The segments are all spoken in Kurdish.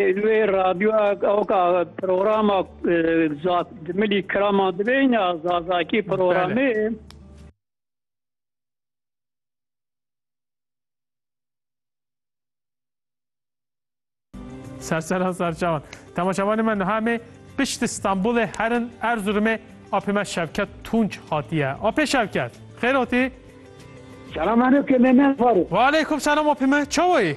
Li wê radyoyek ew ka programa Milî Kirama dibêjne Zazakî programê. Sersera serçavan. Temaşavanê me niha me pişt Stenbolê herin Erzurumê apê me Şevket Tunç hatiye. Apê Şevket, xêr hotî? Selam aleyküm Mehmet Faruk. Ve aleyküm selam apê me, çawa yî?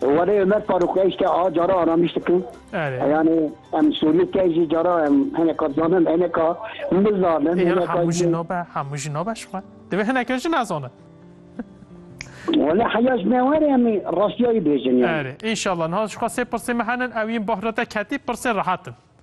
Were Ömer Faruk ez te a cara aramiş dikim. Erê. Yani em Sûrî te jî cara em hineka zanin hineka mizanin Ê yani hemû jî hineka nabe hemû jî nabe ji xwe. Divê hineke jî nezanin. Wele heya ji me were em ê rastiyayî bêjin yani. Erê. Înşallah niha ji xwe sê pirsên me henin ew yên bahrate ketî pirsên rehet in.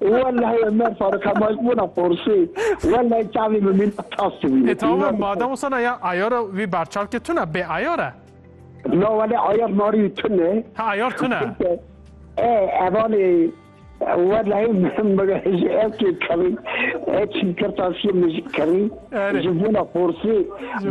Welleh ya mer Faruk Hemal buna porsê. Welleh çavê min mîna tas tu bîne. E tamam e madem wisa ya ayara wî berçavkê tuna bê ayar e. Na wele ayar narî wî tun e. Ha ayar tun e. E evanê welleh ji evkê kerî e çîn kirtasiyê min ji kerî ji bona porsê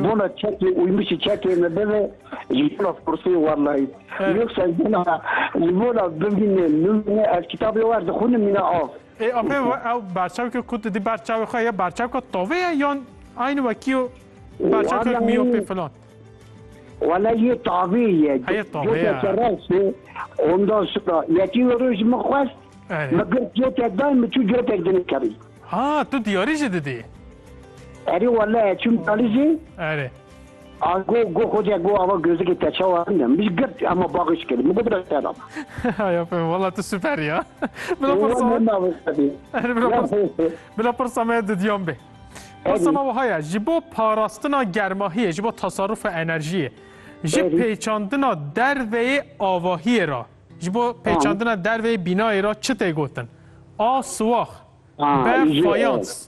bona çekê û min ji çekê me bibe Limona Forsê Warlayît Yoksa gena Limona bimîne nimîne ez kitabê wer dixwînim mîne av. Ê apê ew berçavkê ku tu dî ber çavê xwe ye berçavka tovê ye yan aynî wekî yo berçavkek mîyopê filan? Wala yê tavê ye. Heye tavê ye. Ondan sonra yekî wê roj min xwest min gir cotek dayî min çû cotek dinê kerî. Ha tu diyarî jî didî? Erê wala çûm diyarî jî. Erê. A go go xoce go ava gözikê te çawa ne min ji girt hema bagiş kir min go bira te dam. Haya pê wala tu süper ya. Bila pirsa bila pirsa me didyan bê. Pirsa me wiha ye ji bo parastina germahiyê ji bo tasarrufa enerjiyê ji pêçandina derveyê avahiyê ra ji bo pêçandina derveyê bînayê ra çi tê gotin? A siwax B fayans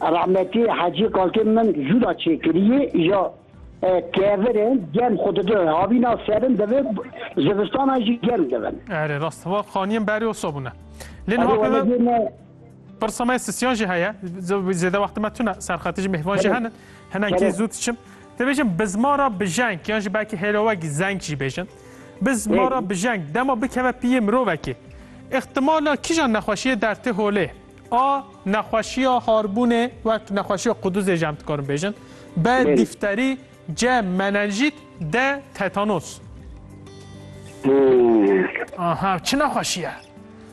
Rahmetî Hecî Kalkê min jûda çêkirîyê ya kevir in germ xwe dide havîna serin divê zivistanan jî germ dibin. Erê rast va qaniyên berê o sobûn e. Lê niha pê me pirsa me sisiyan jî heye zêde wextê me tune serxetê jî mêvan jî hene hinekî zû diçim. Dibêjin bi ziman re bijeng yan jî belkî hêlowek zeng jî bêjin. Bi ziman re bijeng dema bikeve pîyê mirovekê îxtimala kîjan nexweşiyê der tê holê. A nexweşiya harbûnê wek nexweşiya quduzê jî em dikarin bêjin. B dîfterî, C menenjît, D tetanos. Aha çi nexweşî ye?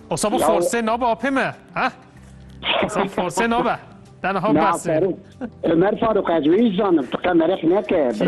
Osa bu forsê nabe apê me. He? Osa forsê nabe. Tenha bes. Ömer Faruk ez wî zanim tu qe merek neke.